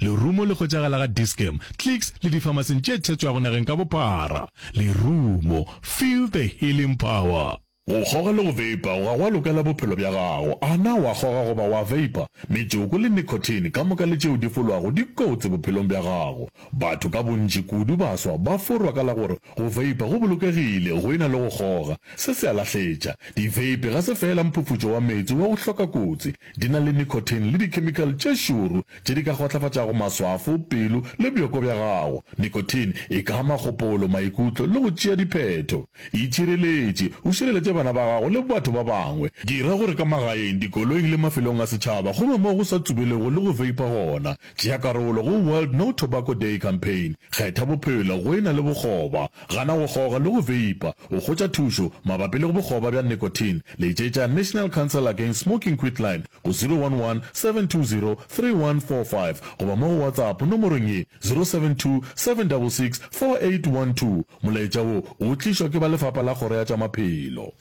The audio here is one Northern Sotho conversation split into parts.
Lerumo le hwetšagala ga Dis-Chem, Clicks le difamasing tše thetšwago nageng ka bophara. Lerumo, feel the healing power. Go kgoga le go veipa ga go a lokela bophelo bja gago. A na o a kgoga goba o a veipa? Metsoko le nicotine ka moka le tšeo di folwago di kotsi bophelong bja gago. Batho ka bontši, kudu baswa, ba forwa ka la gore go veipa go bolokegile go e na le go kgoga. Se se a lahletša. Diveipi ga se feela mphufutšo wa meetse wa go hloka kotsi, Di na le nicotine le dikhemikale tše šoro tše di ka kgotlafatšago maswafo, pelo le bjoko bja gago. Nicotine e ka ama kgopolo, maikutlo le go tšea diphetho. Itšhireletše, o šireletše bana ba gago le batho ba bangwe. Dira gore ka magaeng, dikoloing le mafelong a setšhaba go be mo go sa tsubelego le go veipa gona. Tšea karolo go World No Tobacco Day Campaign. Kgetha bophelo go e na le bokgoba. Gana go goga le go veipa. O hwetša thušo mabapi le go bokgoba bja nicotine? Letšetša National Council Against Smoking Quitline go 011-720-3145 goba mo go WhatsApp nomorong ye, 072-766-4812. Molaetša wo o tlišwa ke ba Lefapa la Kgoro ya tša Maphelo.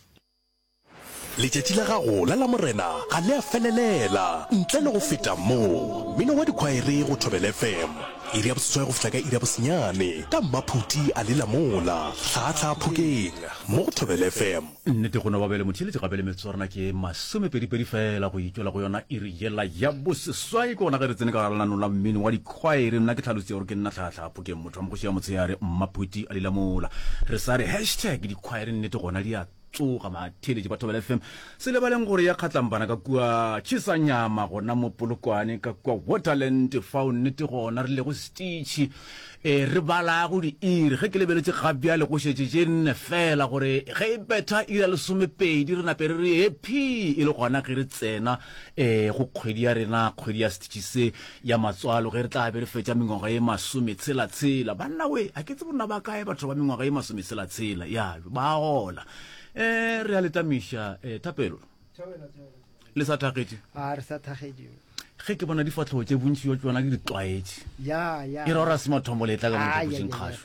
Letšatši la gago la Lamorena ga le a felelela ntle le go feta mo. Mmino wa dikhwaere go Thobela FM, iri ya boseswai go fihla ka iri ya bosenyane ka mmaphuti a lela mola hlaahlaa phokeng mo go Thobela FM. Nnete go no ba bjale motheeletši gape le metsotswana ke masomepedipedi feela go e tšwela go yona iri yela ya boseswai. Ke gona ge re tsene ka gare lenanong la mmino wa dikhwaere. Nna ke tlhalositše gore ke nna hlaahlaa phokeng motho wa mogoši ya motshehare mmaphuti a lela mola. Re sa re hashtag dikhwaere nnete gona di a Tsoga batheeletši ba Thobela FM, se lebaleng gore ya kgatlampana ka kua Chisanyama gona mo Polokwane ka kua Waterland fao nnete gona re lego setitšhi e re balago diiri ge ke lebeletše gabjale go šetše tše nne fela gore ge e betha iri ya lesomepedi re nape re re ephii e le gona ge re tsena um go kgwedi ya rena kgwedi ya setitšhi se ya matswalo ge re tla be re fetša mengwaga ye masometshela-tshela banna we a ke tse bonna ba kae batho ba mengwaga ye masometshela-tshela ya ba gola um re a letamiša um eh, thapelo le sa thagetše a re sa thagetše ge ke bona difatlhogo tše bontši yo tsona ke di tlwaetše e ra ora se mathombo letla ka mothapošeng kgašo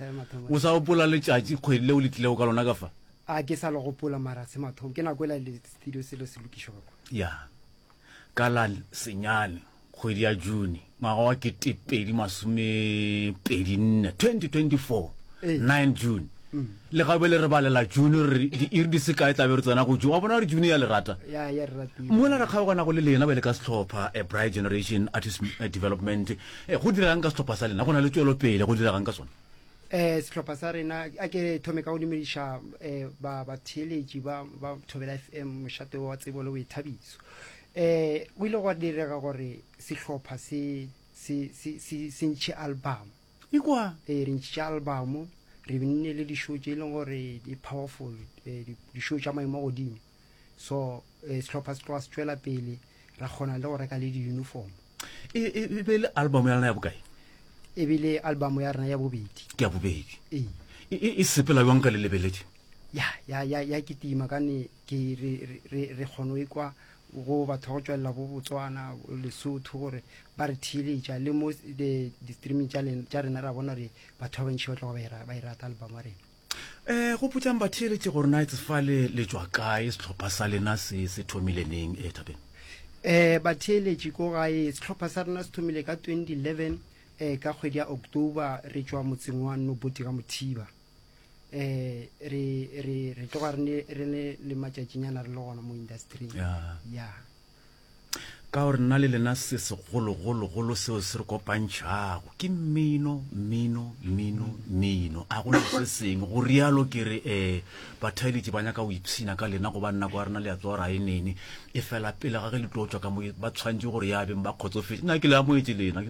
o sa gopola letšatši kgwedi leo le tlilego ka lona ka fa a ke sa le gopola mara se mathomo ke nako e la le studio selo se lokišwa ka kwa ya Ka la senyane kgwedi ya June ngwaga wa ketepedi masomepedi nne 2024 9 June mm. le gabe le re balela June re diiri di sekae tlabe re tsena go June wa bona gore June ya le rata mola re kgaogana go le lena ba le ka setlhopha a bright generation artist eh, development eh, go diragang ka setlhopha sa lena go na le tswelopele go diragang ka sone eh sehlopha sa rena a ke thome ka go dumediša eh ba batheeletši ba ba thobela fm mošate wa tsebo le boithabiso eh go ile gwa direga gore sehlopha se se se se se ntšhe album ikwa eh re ntšhitše album re nne le dišo tše e leng gore di powerful eh, di- dišo tša maemo a godimo so eh, sehlopha se tloga se tšwela pele ra kgona le go reka le di-uniform e, e, e be le album ya rena ya bokae e be le album ya rena ya bobedi ke ya bobedi e, e sepela jwang ka le lebeledi ya ya ya ya ke tima ka ne ke re re re kgono e kwa go batho go tswelela bo botswana lesotho gore ba re theeletša le mo di-streaming tša rena ra bona gore batho ba bantšhi ba tloga ba e rata album wa rena Eh, gopotsang batheeletše gore na etse fa le le tšwa kae, sehlopha sa lena se se thomile neng, eh, Thabeng? Eh, batheeletše ko gae, sehlopha sa rena se thomile ka 2011, eh, ka kgwedi ya October, re tšwa motseng wa Noboti ka Mothiba. Eh, re, re, re tloga re ne, re ne le matšatšinyana re le gona mo industry-ing. Ya. Ya. Ka gore nna le lena se segologologolo seo se re kopantšhago ke mmino, mmino, mmino, mmino. A gona se sengwe go rialo ke re um bathaeletši ba nyaka go ipshina ka lena goba nako ya rena le ya tsoa ra e nene e fela pele ga ge le tlo tswa ka mo ba tshwantše gore ya beng ba kgotsofetše nna ke le amoetše lena